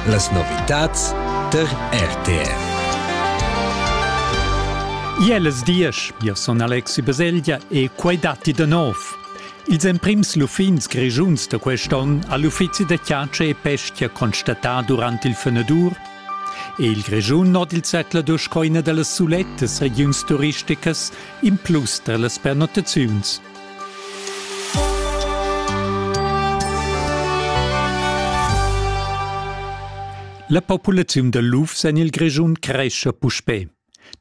Las novitads tar RTR. Jeles diesch, io son Alexi Baselgia e quai datti da nov. Ils emprims luffins grischuns da quest'onn ha l'uffizi da chiace e pestia constatà durant il fenadur. E il Grischun od il zecla dursch coina da las sulettas regiuns turisticas in plus tar las pernottaziuns. La populaziun da lufs en il Grischun crescha puspè.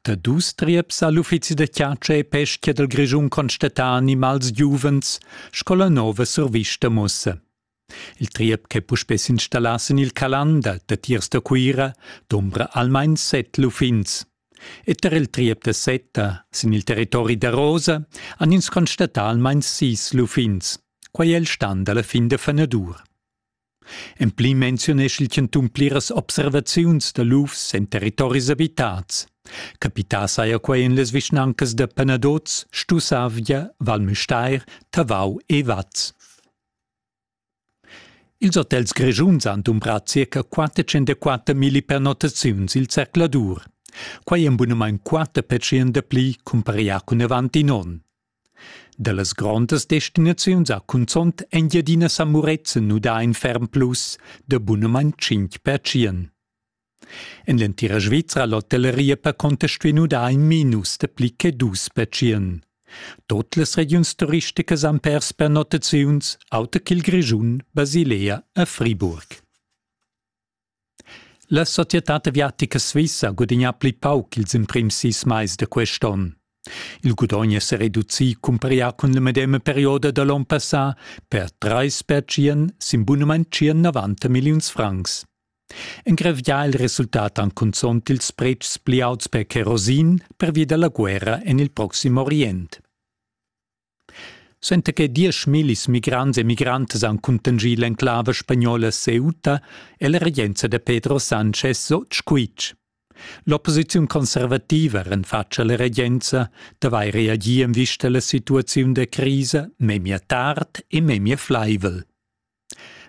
Da dus trieps ha l'uffizi da chatscha e peschia dal Grischun constatà animals giuvens sco la nova survista mussa. Il triep ch'è puspè s'installà sin il Calan dal datiers da Cuira dumbra almain set luffins. E tar il triep da Seta sin il territori da Rosa han ins constatà almain sis luffins. Quai è il stan da la fin da fenadur. En pli menziunesch il chantun pliras observaziuns da lufs en territoris abitads. Capità saja quai en las vischnancas da Penadoz, Stussavgia, Val Müstair, Tavau e Vaz. Ils hotels grischuns han dumbrà circa 404 milli pernottaziuns il zercladur. Quai en bunamain quatter percent dapli cumparià cun avant in onn. Da las grondas destinaziuns ha cunzont Engiadina Sa Murezzan nudà in ferm plus da bunamain 5 percent. En l'entira Svizra ha l'hotelleria per contester nu dà in minus da pli che dus pertschient. Tut las regiuns turisticas han pers per notaziuns, auter ch'il Grischun, Basilea e Friburg. La societad aviatica svissa ha gudagnà pli pauc ils emprims sis mais da quest onn. Il gudogn è sa reducì cumparià cun la medema perioda da l'onn passà per 3 pertschient sin bunament 90 milliuns francs. Engravià il resultat han cunzont ils pretschs pli auts per kerosin pervia dalla guerra en il proxim Orient. Senza che dieschmillis migrants e migrantes han cuntanschì l'enclave spagnola Ceuta e la regenza da Pedro Sánchez Scuitg. L'opposiziun conservativa renfatscha la regenza d'avair reagì en vista alla situaziun da crisa memia tard e memia flaivel.